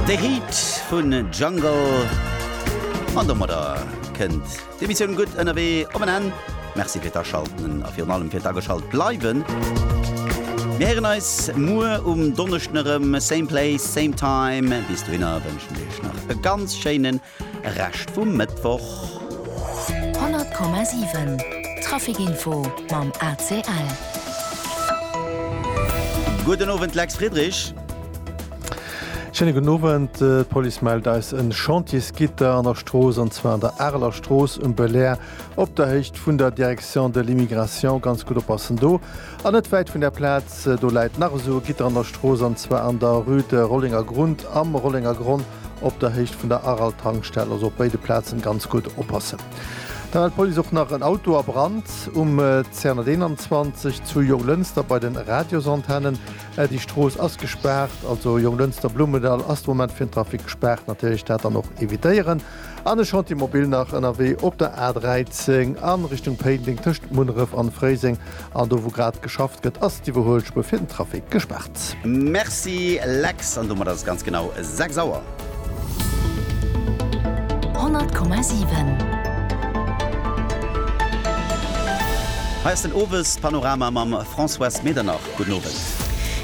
De Hit vun Jungle an domadder kënnt d'Emissioun gutt ënnerwee op en Enn. Merci fir d'Aschalten a virun allem fir d'Ageschalt bleiwen. Mir héieren eis muer um Donneschden erëm, same place, same time. Bis dohinner wënschen ech iech nach e ganz schéinen Rescht vum Mëttwoch. 100,7 Trafic Info mam ACL. Gudden Owend Lex Friedrich. Schéine gudden Owend. D'Police mellt eis en Chantiersgitter an der Strooss, an zwar an der Areler Strooss um Belair op der Héicht vun der Direction de l'Immigration. Ganz gutt oppassen do. An net wäit vun där Plaz do läit nach esou e Gitter an der Strooss, an zwar an der Rue de Rollengergrund am Rollengergronn op der Héicht vun der Aral-Tankstell. Also op béide Plazen ganz gutt oppassen. Dann hat d'Police och nach en Auto a Brand um 221 zu Jonglënster bei den Radiosantennen. Déi Strooss ass gespaart, also Jonglënster-Blumendall ass de Moment fir den Trafic gespaart. Natierlech dat dann och evitéieren. An e Chantier mobil nach ënnerwee op der A 13 a Richtung Péiteng tëscht Munneref an Fréiseng. An do wou grad geschafft gëtt ass d'Iwwerhuelspuer fir den Trafic gespaart. Merci Lex, an domat ass et ganz genau 6 Auer. 100,7. Hei ass den Owespanorama mam Françoise Medernach. Gudden Owend.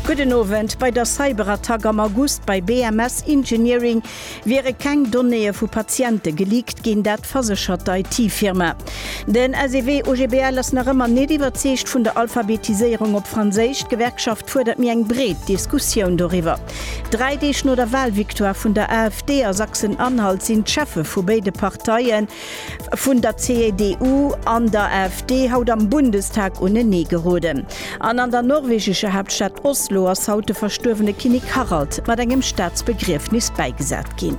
Gudden Owend. Bei der Cyberattack am August bei BMS Engineering Wiere keng Donnéeë vu Patiente geleakt ginn, dat verséchert d'IT-Firma. Den SEW OGBL ass nach ëmmer net iwwerzeegt vun der Alphabetiséierung op Franséisch. D'Gewerkschaft fuerdert méi eng breet Diskussioun doriwwer. Dräi Deeg no der Walvictoire vun der AfD a Sachsen-Anhalt sinn d'Cheffe vu béide Parteien vun der CDU an der AfD haut am Bundestag unenee geroden an an der norwegescher Haaptstad Oslo ass haut de verstuerwene Kinnek Harald mat engem Staatsbegriefnis bäigesat ginn.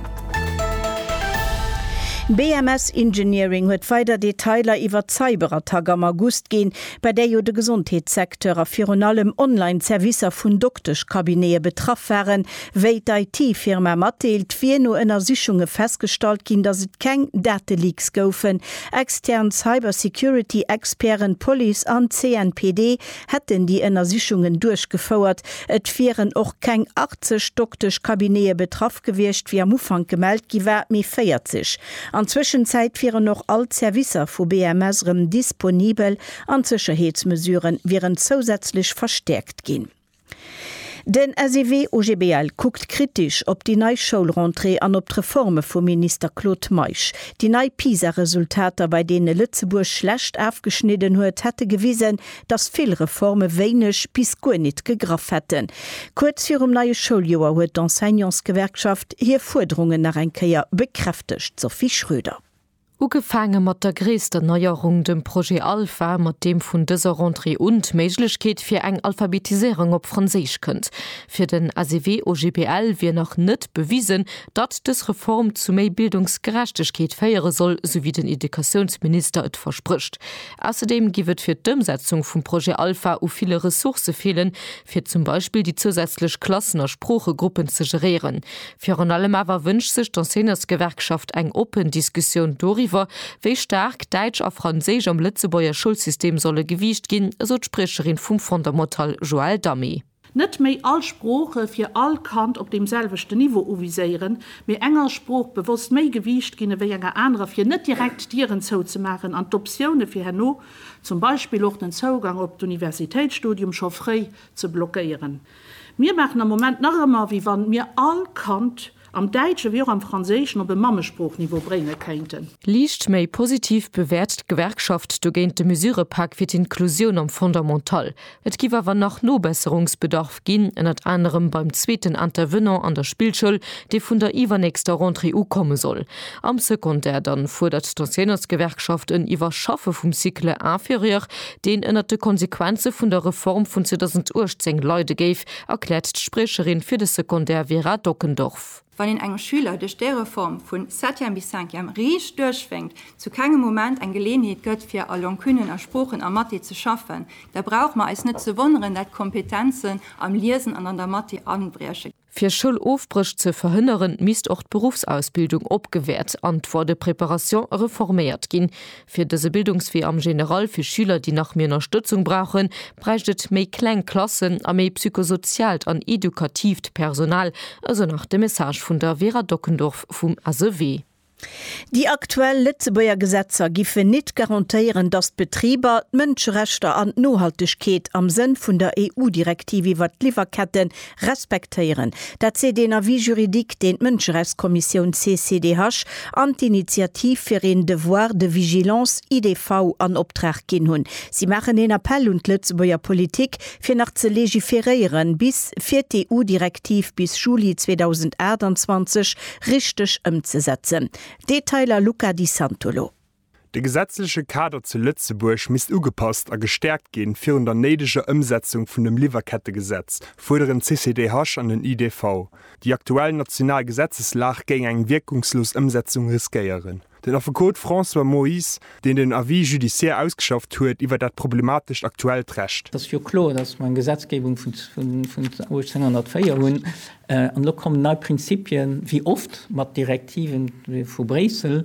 BMS Engineering huet weider Detailer iwwert d'Cyberattack am August ginn, bei där jo de Gesondheetssecteur a virun allem Online-Servicer vun Dokteschcabinete betraff waren, Wéi d'IT-Firma matdeelt, wier no Ënnersichunge festgestallt ginn, datt et keng Dateleaks goufen. Extern Cybersecurity-Experten, d'Police an d'CNPD hätten déi Ënnersichungen duerchgefouert. Et wieren och keng 80 Dokteschcabinete betraff gewiescht, wéi am Ufank gemellt gi war, mee 40. An Zwëschenzäit wieren och all d'Servicer vu BMS erëm disponibel an d'Sécherheetsmesuren wieren zousätzlech verstäerkt ginn. Den SEW OGBL kuckt kritisch op déi nei Schoulrentrée an op d'Reforme vum Minister Claude Meisch. Déi nei PISA-Resultater, bei deene Lëtzebuerg schlecht afgeschnidden huet, hätte gewisen, datt vill Reforme wéineg bis guer nit gegraff hätten. Kuerz virum neie Schouljoer huet d'Enseignantsgewerkschaft hir Fuerderungen nach eng Kéier bekräftegt, Sophie Schröder. Ugefaange mat der gréisster Neierung, dem Projet Alpha, mat deem vun dëser Rentrée un d'Méiglechkeet fir eng Alphabetiséierung op Franséisch kënnt. Fir den SEW-OGBL wier nach net bewisen, datt dës Reform zu méi Bildungsgerechtegkeet féiere soll, sou wéi den Educatiounsminister et versprécht. Ausserdeem giff et fir d'Ëmsetzung vum Projet Alpha u ville Ressourcë feelen, fir zum Beispill déi zousätzlech Klassen a Sproochegruppen ze geréieren. Virun allem awer wënscht sech d'Enseignantsgewerkschaft eng oppen Diskussioun doriwwer, wéi staark Däitsch a Franséisch am Lëtzebuerger Schoulsystem solle gewiicht ginn, esou d'Spriecherin vum Fondamental Joëlle Damé. Net méi all Sprooche fir all Kand op deem selwechten Niveau uviséieren, mee enger Sprooch bewosst méi Gewiicht ginn ewéi enger anerer, fir net direkt Dieren zouzemaachen an d'Optioune fir herno, zum Beispill och den Zougang op d'Universitéitsstudium, scho fréi ze blockéieren. Mir maachen am Moment nach ëmmer, wéi wann mir all Kand am Däitschen wéi och am Franséischen op e Mammesproochniveau brénge kéinten. Liicht méi positiv bewäert d'Gewerkschaft dogéint de Mesurëpak fir d'Inklusioun am Fondamental. Et géif awer nach Nobesserungsbedarf ginn, ënnert anerem beim zweeten Intervenant an der Spillschoul, dee vun der iwwernächster Rentrée u komme soll. Am Secondaire dann fuerdert d'Enseignantsgewerkschaft en Iwwerschaffe vum Cycle inférieur, deen ënnert de Konsequenze vun der Reform vun 2018 leide géif, erkläert d'Spriecherin fir de Secondaire Vera Dockendorf. Wann een engem Schüler duerch déi Reform vu Septième bis Cinquième riicht duerchwénkt, zu kengem Moment eng Geleeënheet gëtt fir a Longuenen, a Sproochen, a Mathé ze schaffen, da brauche mer eis net ze wonneren, dat d'Kompetenzen am Liesen an an der Mathé abrieche. Fir Schoulofbréch ze verhënneren, misst och d'Beruffsausbildung opgewäert an d'Voie de préparation reforméiert ginn. Fir dëse Bildungswee am General fir Schüler, déi nach méi Ënnerstëtzung brauchen, bräicht et méi kleng Klassen a méi psychosoziaalt an edukatiivt Personal, esou nach de Message vun der Vera Dockendorf vum SEW. Déi aktuell Lëtzebuerger Gesetzer giffen nit garantéieren, datt d'Betriber d'Mënscherechter an d'Nohaltegkeet am Sënn vun der EU-Direktiv iwwert d'Liwwerkette respektéieren. Dat seet een Avis juridique, deen d'Mënscherechtskommissioun CCDH an d'Initiativ fir een Devoir de vigilance, IDV, an Optrag ginn hunn. Si maachen een Appell un d'Lëtzebuerger Politik, fir nach ze legiferéieren, bis fir d'EU-Direktiv bis Juli 2028 richteg ëmzesetzen. Detailer Luca Di Santolo. De gesetzleche Kader zu Lëtzebuerg misst ugepasst a gestärkt ginn, virun der néideger Ëmsetzung vun dem Liwwerkettegesetz, fuerderen d'CCDH an den IDV. Déi aktuell national Gesetzeslag géing eng wierkungslos Ëmsetzung riskéieren. Den Affekot François Moyse, deen den Avis judiciaire ausgeschafft huet iwwer dat problematescht aktuellt Recht. Ass jo kloer, datt mer eng Gesetzgebung vun 1804 hunn an elo kommen nei Prinzipien, wéi oft, mat Direktiven vu Bréissel.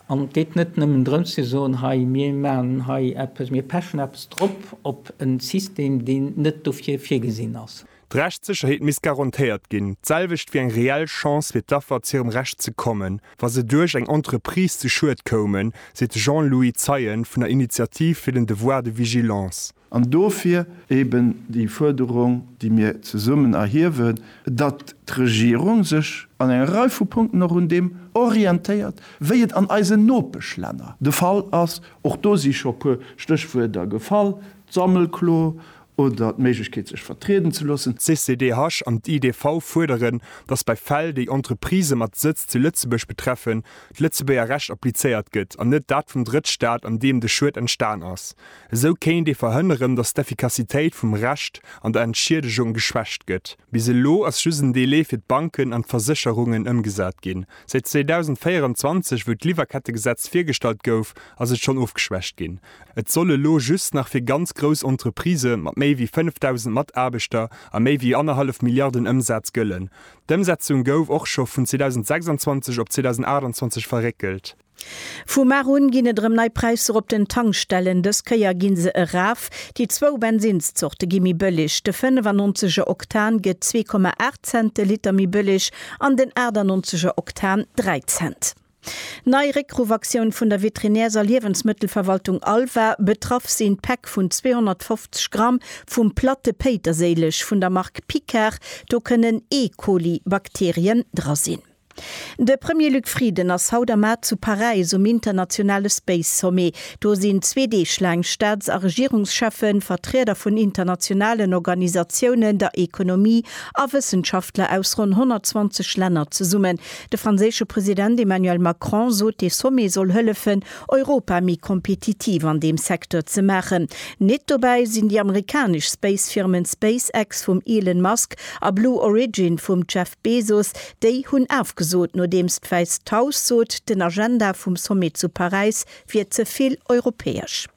An et geet net nëmmen drëms ze soen, hei mir maachen hei eppes, mir pechen eppes drop op e System, deen net dofir virgesinn ass. D'Rechtssécherheet misst garantéiert ginn, d'selwecht wéi eng reell Chance fir d'Affer zu hirem Recht ze kommen, wa se duerch eng Entreprise zu Schued koumen, seet de Jean-Louis Zeien vun der Initiative fir den Devoir de vigilance. An dofir eben déi Fuerderung, déi mir zesummen erhiewen, datt d'Regierung sech an enger Rei vu Punkten och un deem orientéiert, wéi et an eisen Nopeschlänner de Fall ass. Och do si scho e puer Stéchwuerter gefall, d'Sammelklo Oder d'Méiglechkeet sech vertrieden ze loossen. D'CCDH an d'IDV fuerderen, datt bei Fäll, déi Entreprisë mat Sëtz zu Lëtzebuerg betreffen, d'Lëtzebuerger Recht applizéiert gëtt an net dat vum Drëttstaat, an deem de Schued entstan ass. Esou kéint ee verhënneren, datt d'Effikassitéit vum Recht an der Entschiedegung geschwächt gëtt. Bis elo ass just en Delai fir d'Banken an d'Versécherungen ëmgesat ginn. Säit 2024, wou d'Liwwerkettegesetz virgestallt gouf, ass et schonn ofgeschwächt ginn. Et soll elo just nach fir ganz grouss Entreprisë mat méi wéi 5.000 Mataarbechter a méi wéi annerhallef Milliarden Ëmsaz gëllen. D'Ëmsetzung gouf och scho vun 2026 op 2028 verréckelt. Vu mar un ginn et erëm nei Präisser op den Tankstellen. Dës Kéier gi se eraf. Déi zwou Bensinnszorte gi méi bëlleg. De 95 er Oktan gëtt 2,8 Cent de Liter méi bëlleg an den 98 er Oktan 3 Cent. Nei Réckruffaktion vun der Veterinärs a Liewensmëttelverwaltung ALVA, Betraff sinn d'Päck vun 250 Gramm vum Platte Péiterséileg vun der Mark Picard. Do kënnen E. Coli Bakterien dra sinn. De Premier Luc Frieden ass haut a mar zu Paräis um internationale Space Sommet. Do sinn zwee Deeg laang Staats a Regierungscheffen, Vertrieder vun internationalen Organisatiounen, der Ekonomie a Wëssenschaftler aus ronn 120 Länner zesummen. De franséische President Emmanuel Macron sot, dee Sommet soll hëllefen, Europa méi kompetitiv an deem Secteur ze maachen. Nit dobäi sinn déi amerikanesch Space-Firmen SpaceX vum Elon Musk a Blue Origin vum Jeff Bezos. Déi hunn afgesot, nodeems d'Wäisst Haus sot, den Agenda vum Sommet zu Paräis wier ze vill europäesch.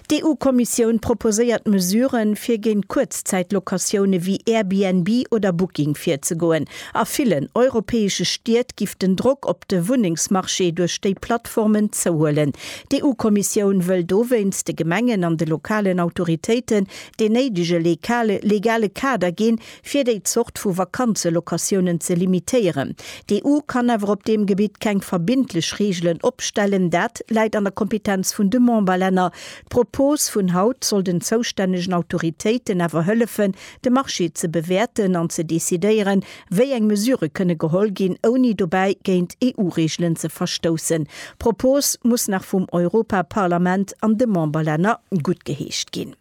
D'EU-Kommissioun proposéiert Mesuren, fir géint Kuerzzäit-Locatioune wéi Airbnb oder Booking virzegoen. A villen europäesche Stied giff den Drock op de Wunnengsmarché duerch déi Plattformen zouhuelen. D'EU-Kommissioun wëll dowéinst de Gemengen an de lokalen Autoritéiten deen néidege legale Kader ginn, fir déi Zort vu Vakanzelocatiounen ze limitéieren. D'EU kann awer op deem Gebitt keng verbindlech Reegelen opstellen, dat läit an der Kompetenz vun de Memberlänner. D'Propos vun haut soll den zoustännegen Autoritéiten awer hëllefen, de Marché ze bewäerten an ze decidéieren, wéi eng Mesurë kënne geholl ginn, ouni dobäi géint EU-Reegelen ze verstoussen. D'Propos muss nach vum Europaparlament an de Memberlänner guttgeheescht ginn.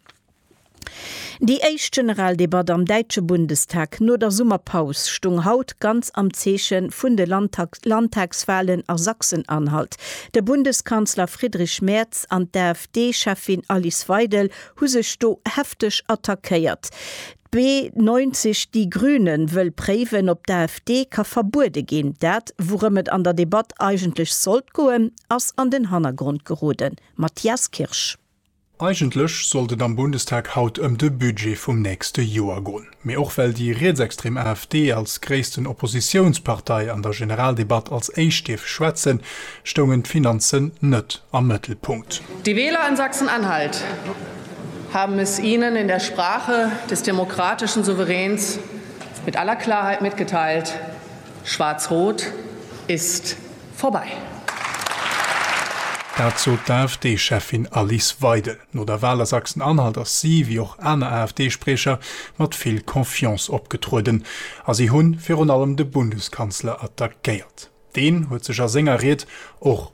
Déi éischt Generaldebatt am däitsche Bundestag no der Summerpaus stung haut ganz am Zeeche vun de Landtagswalen a Sachsen-Anhalt. De Bundeskanzler Friedrich Merz an d'AfD-Cheffin Alice Weidel hu sech do hefteg attackéiert. B90 Die Grünen wëll préiwen, ob d'AfD ka verbuede ginn. Dat, wourëm et an der Debatt eigentlech sollt goen, ass an den Hannergrond geroden. Matthias Kirsch. Eigentlech sollt et am Bundestag haut ëm de Budget vum nächste Joer goen, mee och well déi rietsextrem AfD als gréissten Oppositiounspartei an der Generaldebatt als éischt dierf schwätzen, stoungen d'Finanzen net am Mëttelpunkt. Die Wähler in Sachsen-Anhalt haben es Ihnen in der Sprache des demokratischen Souveräns mit aller Klarheit mitgeteilt. Schwaarz-Rot ist vorbei. Dat sot d'AfD-Cheffin Alice Weidel. No der Wal a Sachsen-Anhalt ass si, wéi och aner AfD-Spriecher, mat vill Confiance opgetrueden a si hu virun allem de Bundeskanzler attackéiert. Deen huet sech a senger Ried och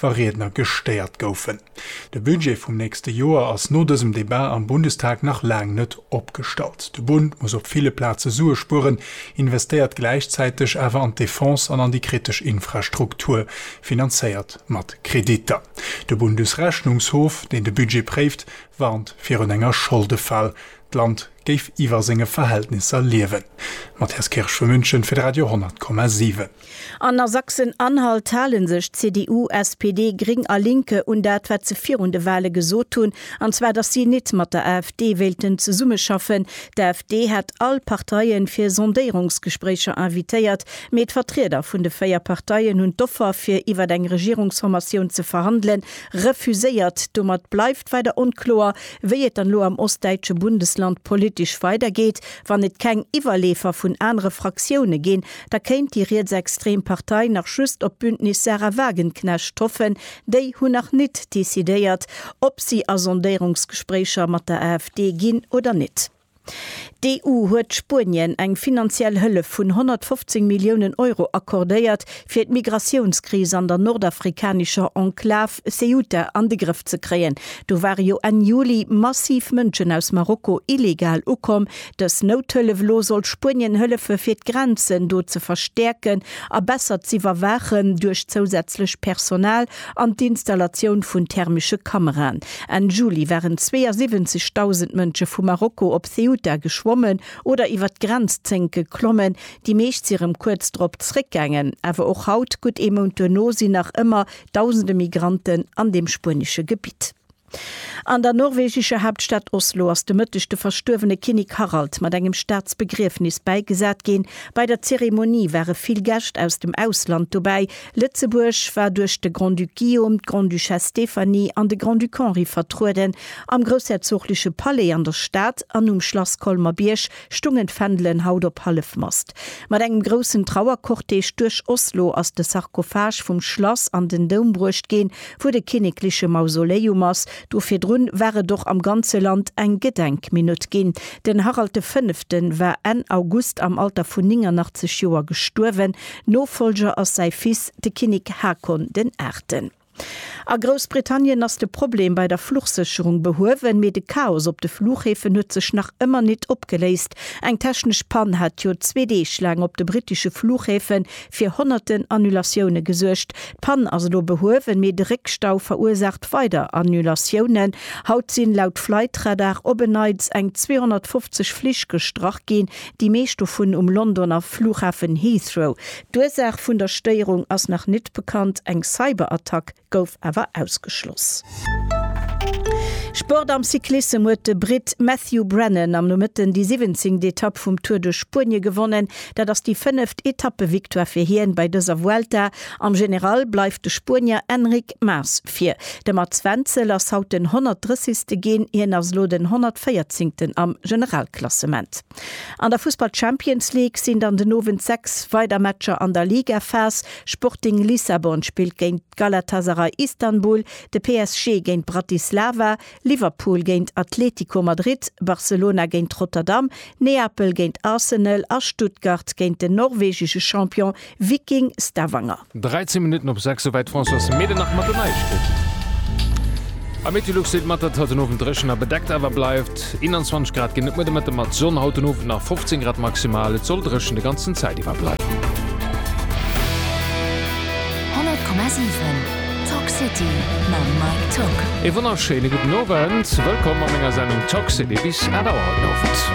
wa Riedner gestéiert goufen. De Budget vum nächste Joer ass no dësem Debat am Bundestag nach laang net opgestallt. De Bund muss op ville Plaze Sue spueren, investéiert gläichzäiteg awer an d'Defense an an déi kritesch Infrastruktur, finanzéiert mat Kreditter. De Bundesrechnungshof, deen de Budget préift, warnt virun enger Scholdefal, d'Land géif iwwer senge Verhältnisser liewen. Matthias Kirsch vu München fir de Radio 10,7. An a Sachsen-Anhalt hale sech CDU, SPD, Gring a Linke un dat, wat se virun de Wale gesot hunn, an zwar datt si nit mat der AfD wéilten zesummeschaffen. D'AfD hat all Parteie fir Sondéierungsgespréicher invitéiert, mee d'Vertrieder vun de véier Parteien hunn d'Offer fir iwwer eng Regierungsformatioun ze verhandele refuséiert. Domat bleift weider onkloer, wéi et dann elo am ostdäitsche Bundesland politesch weidergeet, wann et keng Iwwerleefer vun anere Fraktioune ginn, Da kéint déi rietsextrem Partei nach just op d'Bündnis Sahra Wagenknecht hoffen. Déi hunn nach nit decidéiert, ob si a Sondéierungsgespréicher mat der AfD ginn oder nit. D'EU huet Spuenien eng finanziell Hëllef vun 115 Milliounen Euro accordéiert, fir d'Migratiounskris an der nordafrikanescher Enklav Ceuta an de Grëff ze kréien. Do ware jo Enn Juli massiv Mënschen aus Marokko illegal ukomm, Dës Nouthëllef elo soll Spuenien hëllefe fir d'Grenzen do ze verstäerken a besser z'iwwerwaachen duerch zousätzlech Personal an d'Installatioun vun thermesche Kameraen. Enn Juli waren 72.000 Mënsche vu Marokko op Ceuta geschwommen oder iwwer d'Grenzzénk geklommen, déi meescht si rëm kuerz drop zeréckgaangen. Awer och haut, gutt ee Mount duerno, sinn nach ëmmer Dausende Migranten an deem spuenesche Gebitt. An der norwegescher Haaptstad Oslo ass de Mëtteg de verstuerwene Kinnek Harald mat engem Staatsbegriefnis bäigesat ginn. Bei der Zeremonie ware vill Gäscht aus dem Ausland dobäi. Lëtzebuerg war duerch de Grand-Duc Guillaume, d'Grande-Duchesse Stéphanie an de Grand-Duc Henri vertrueden. Am groussherzogleche Palais an der Stad an um Schlass Colmer-Bierg stungen d'Fändelen haut op Hallefmast. Mat engem groussen Trauercortège duerch Oslo ass de Sarkophage vum Schlass an den Doum bruecht ginn, wou de kinnekleche Mausoleum ass. Do virdrun war et och am ganze Land eng Gedenkminutt ginn. Den Harald de Fënneften war Enn August am Alter vun 89 Joer gestuerwen. Nofollger ass säi Fils, de Kinnek Haakon den Aachten. A Groussbritannien ass de Problem bei der Fluchsécherung behuewen, mee de Chaos op de Flughäfen huet sech nach ëmmer nit opgeléist. Eng technesch Pann hat jo zwee Deeg laang op de brittesche Flughäfe fir honnerten Annulatioune gesuergt. D'Pann ass elo behuewen, mee de Réckstau verursaacht weider Annulatiounen. Haut sinn laut Flightradar op en Neits eng 250 Flich gestrach ginn, déi meescht dovun um Londoner Flughafen Heathrow. D'Ursaach vun der Stéierung ass nach net bekannt, eng Cyberattack gouf awer ausgeschloss. Sport Am Cyclissem huet de Britt Matthew Brennan am Nomëtten déi siwwenzéngt Etapp vum Tour de Spuenie gewonnen. Dat ass déi fënneft Etappevictoire fir hien bei dëser Vuelta Am General bleift de Spuenier Enric Mas vir. De Mats Wenzel ass haut den 130. ginn. Hien ass elo den 114. am Generalklassement. An der Fussball Champions League sinn dann den Owend 6 weider Matcher an der Ligaphas. Sporting Lissabon spillt géint Galatasaray Istanbul, de PSG géint Bratislava, Liverpool géint Atlético Madrid, Barcelona géint Rotterdam, Neapel géint Arsenal a Stuttgart géint den norwegesche Champion Viking Stavanger. 13 Minutten op 6, souwäit d'Françoise Mehlen nach mat den Neiegkeeten. A Meteolux seet mat, datt haut den Owend dréchen a bedeckt awer bleift. 21 Grad ginn et muer de Mëtte mat Sonn, haut den Owend nach 15 Grad maximal. Et soll dréchen de ganzen Zäit iwwer bleiwen. 100,7 Talk City mam Mike Tock. Ee wonnerschéine gudden Owend, wëllkomm a menger Sendung Talk City bis 8 Auer haut den Owend.